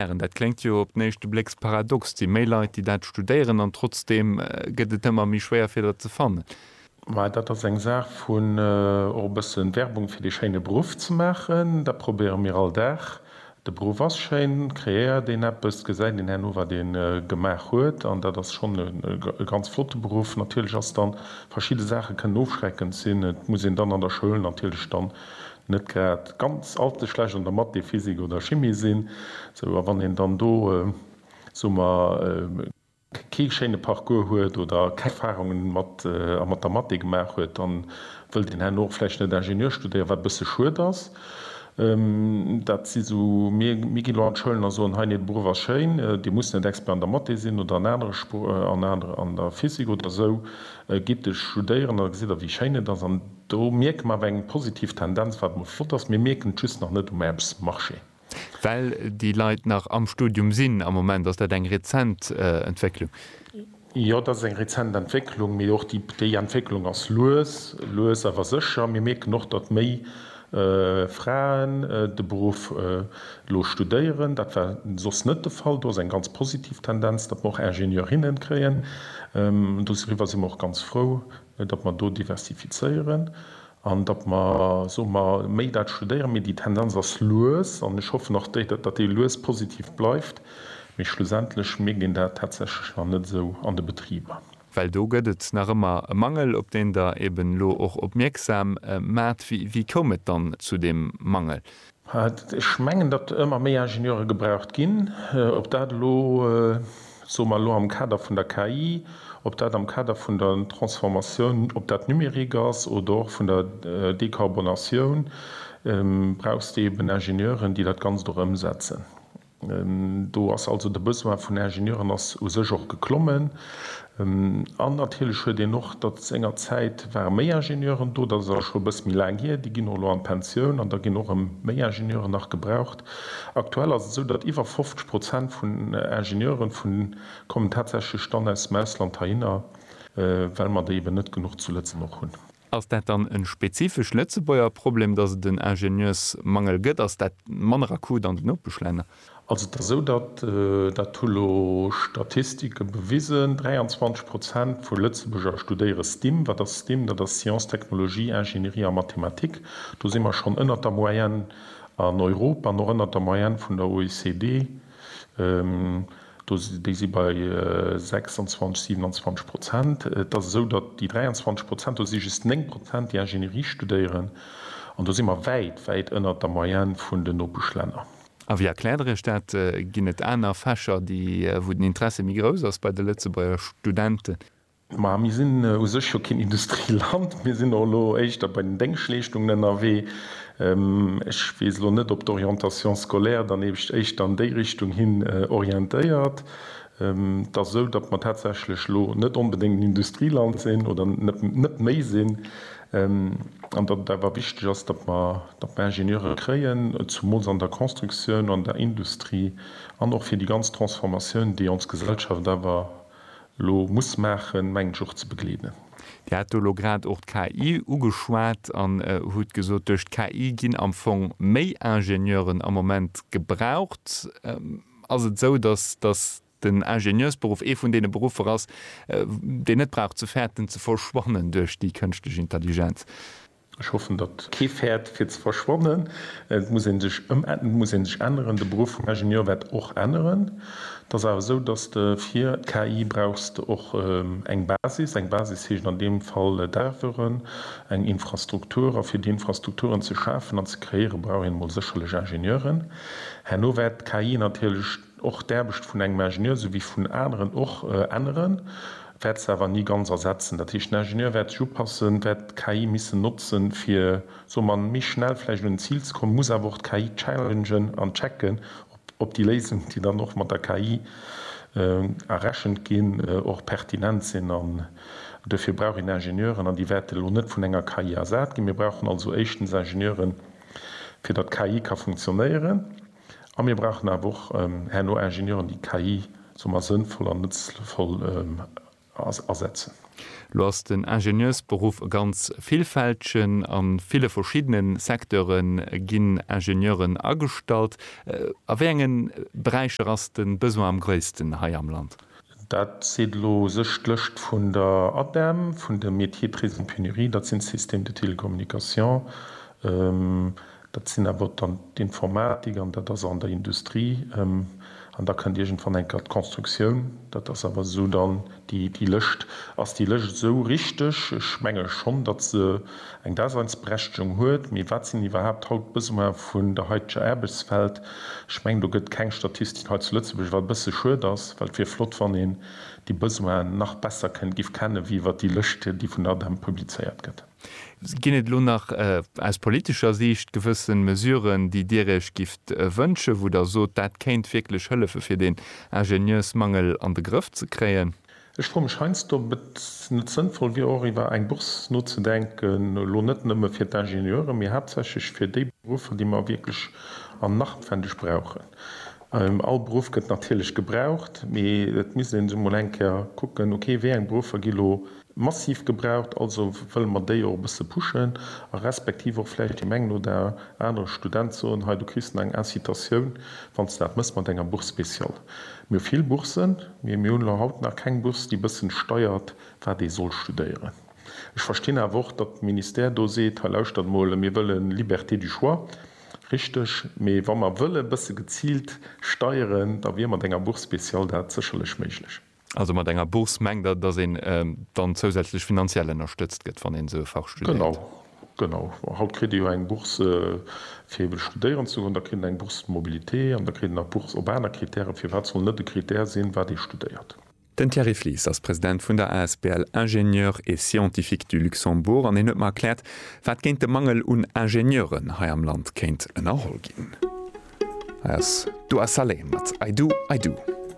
Ären, dat kléngt jo op den éischte Blécks paradox, et si méi Leit, déi dat studéieren an trotzdeem gëtt et ëmmer méi schwéier, fir dat ze fannen. Mä dat ass eng Saach vun och e bësse Werbung fir dee schéine Beruff ze maachen. Dat probéiere mir all Dag. De Beruff ass schéin, kreéiert een eppes, gesäit een herno, wat ee gemaach huet an dat ass schonn e ganz flotte Beruff. Natierlech ass dann, verschidde Saache kënnen ofschreckend sinn, et muss een dann an der Schoul natierlech dann net grad ganz allze schlecht an der Mathé, Physik oder Chimie sinn, sou a wann een dann do, soe mer, kee schéine Parcours huet oder keng Erfahrunge mat a mat der Mathé gemaach huet, dann wëllt een herno och vläicht net Ingenieur studéieren, wat e bësse schued ass. Dat si sou, mir ginn elo an d'Schoulen a soen, hei, nee, de Beruff ass schéin, dir musst net Expert an der Mathé sinn oder an anere Spr an anere an der Physik oder sou, gitt studéieren, da gesitt der wéi schéin et ass an, Do mierke mer awer eng positiv Tendenz, wat emol flott ass. Mir mierken et just nach net um Aarbechtsmarché. Well déi Leit nach am Studium sinn am Moment. Ass dat eng rezent Entwécklung? Jo, dat ass eng rezent Entwécklung. Mee och déi Entwécklung ass lues, lues awer sécher. Mir mierken och, datt méi Fraen de Beruff elo studéieren. Dat war soss net de Fall. Do ass eng ganz positiv Tendenz, datt mer och Ingenieurinne kréien. Doriwwer si mer och ganz frou. datt mer do diversifizéieren an datt mer, soe mer, méi dat studéieren, mee déi Tendenz ass lues, an ech hoffen och, datt déi lues positiv bleift, mee schlussendlech mierkt een dat tatsächlech nach net esou an de Betriber. Well do gëtt et nach ëmmer e Mangel, op deen Der eeben elo och opmierksam maart. Wéi koum et dann zu deem Mangel? Ech mengen, datt ëmmer méi Ingenieure gebraucht ginn. Ob dat elo, soe mer elo am Kader vun der KI, ob dat am Kader vun der Transformatioun, ob dat Numérique ass oder och vun der Dekarbonatioun, brauchst de eben Ingenieuren, déi dat Ganzt och ëmsetzen. Do ass also de Besoin vun Ingenieuren ass u sech och geklommen. An natierlech huet een och, datt sengerzäit ware méi Ingenieuren do, dat ass awer scho e bësse méi laang hier, déi ginn och elo an d'Pensioun an da ginn och erëm méi Ingenieuren nach gebraucht. Aktuell ass et esou, datt iwwer 50 Prozent vun Ingenieuren vu kommen tatsächlech dann aus dem Ausland heihinner, well mer déi eben net genuch zu Lëtzebuerg hunn. Ass dat dann e spezifesch Lëtzebuerger Problem, datt et en Ingenieursmangel gëtt? Ass dat manner akut an den Nopeschlänner? Also et ass esou, datt, dat hu lo Statistike bewisen, 23 Prozent vu Lëtzebuerger studéiere STIM. Wat ass STIM? Dat ass Science, Technologie, Ingénierie a Mathematik. Do si mer schonn ënnert der Moyenne an Europa an och ënnert der Moyenne vun der OECD. Déi si bei 26, 27 Prozent. Et ass esou, datt déi 23 Prozent, do si just 9 Prozent, déi Ingénierie studéieren. An do si mer wäit, wäit ënnert der Moyenne vun den Nopeschlänner. A wéi erkläert Der Iech dat? Ginn et aner Fächer, déi, wou den Interesse méi grouss ass bei de Lëtzebuerger Studenten? Ma mir sinn u sech jo keen Industrieland, mir sinn och elo éischter bei den Déngschleeschtungen ënnerwee. Ech weess elo net, ob d'Orientation scolaire dann ebecht éischter an déi Richtung hin orientéiert. Et ass esou, datt mer tatsächlech elo net onbedéngt en Industrieland sinn oder net méi sinn an datt et awer wichteg ass, datt mer Ingenieure kréien, zumools an der Constructioun, an der Industrie an och fir déi ganz Transformatioun, déi ons Gesellschaft awer lo muss maachen, mengen ech och ze begleeden. Dir hat do elo grad och d'KI ugeschwat an hutt gesot, duerch d'KI ginn am Fong méi Ingenieuren am Moment gebraucht. Ass et esou, datt den Ingenieursberuff ee vun deene Beruffer ass, deen net brauch ze fäerten, ze verschwannen duerch déi kënschtlech Intelligenz? Ech hoffen, datt kee fäert fir ze verschwannen. Et muss ee sech ëmäntnen, et muss ee sech änneren. De Beruff vum Ingenieur wäert och änneren. Et ass awer esou, datt de fir d'KI brauchs de och eng Basis. Eng Basis heescht an deem Fall d'Erveren, eng Infrastruktur. A fir déi Infrastrukturen ze schafen an ze kreéiere brauch een emol sécherlech Ingenieuren. Herno wäert d'KI natierlech och d'Aarbecht vun engem Ingenieur souwéi vun aneren och änneren, wäert se awer ni ganz ersetzen. Dat heescht, den Ingenieur wäert sech upassen, wäert d'KI missen notzen, fir, soe mer, méi schnell vläicht un en Zil ze kommen, muss awer och d'KI challengen an checken, ob déi Léisungen, déi dann och mat der KI errechent ginn, och pertinent sinn. An duerfir brauch een Ingenieuren, an déi wäerte elo net vun enger KI ersat ginn. Mir brauchen also éischtens Ingenieuren, fir datt d'KI ka funktionéieren. A mir brauchen awer och herno Ingenieuren, déi KI soe mer sënnvoll an nëtzvoll asetzen. Elo ass den Ingenieursberuff e ganz villfältegen. A ville verschiddene Secteure ginn Ingenieuren agestallt. A wéi enge Beräicher ass de Besoin am gréissten hei am Land? Dat seet elo u sech d'Lëscht vun der ADEM, vun de Métiers très en pénurie, dat sinn d'Systèmes de télécommunication, Dat sinn awer dann d'Informatik an dat ass an der Industrie. An da kënnt iergendwann enker d'Constructioun. Dat ass awer esou dann déi Lëscht. Ass déi Lëscht esou richteg? Ech menge schonn, datt se eng Daseinsberechtegung huet. Mee wat sinn iwwerhaapt haut d'Besoine vun der haiteger Aarbechtswelt? Ech mengen, do gëtt keng Statistik hei zu Lëtzebuerg, wat e bësse schued ass, well et wier flott, wann een déi Besoinen nach besser kënnt, giff kennen, wéi iwwer déi Lëscht, déi vun der ADEM publizéiert gëtt. Ginn et elo nach aus politescher Siicht gewëssen Mesuren, déi Dir Iech gifft wënschen, wou Der sot, dat kéint wierklech hëllefen, fir deen Ingenieursmangel an de Grëff ze kréien? Ech froe mech heiansdo, ob et net sënnvoll wier, och iwwer eng Bourse nozedenken, elo net nëmme fir d'Ingenieuren, mee haaptsächlech fir déi Beruffer, déi mer wierklech an nachtwendeg brauchen. All Beruff gëtt natierlech gebraucht, mee et misst ee sech emol eng Kéier kucken, okay, wéi eng Beruffer gi elo. Massiv gebraucht, also wëlle mer déi och e bësse pushen a respektiv och vläicht deem engen oder anere Student soen, hei du kriss nach eng Incitatioun, wann s de dat mëss mat enger Bourse spéciale. Mir hu vill Boursen, mee mir hunn elo haut nach keng Bourse, déi e bëssen steiert, wat ee soll studéieren. Ech verstinn awer och, datt de Ministère do seet, hei lauschtert mol, mir wëlle Liberté du choix, richteg, mee wa mer wëlle e bësse geziilt steieren, da wier mat enger Bourse spéciale dat sécherlech méiglech. Also mat enger Bourse mengt Der, dass een dann zousätzlech finanziell ënnerstëtzt gëtt, wann een esou e Fach studéiert? Genau, genau. Haut kritt ee jo eng Bourse, fir eeben studéieren ze goen, da kritt een eng Bourse mobilité an da kritt een nach d'Bourse op aner Krittären. Firwat soll net e Krittär sinn, wat ee studéiert? Den Thierry Flies ass President vun der asbl Ingénieurs et Scientifiques du Luxembourg an hien huet mer erkläert, wat géint de Mangel un Ingenieuren hei am Land kéint ënnerholl ginn. Hei ass Doua Saleh mat I Do, I Do.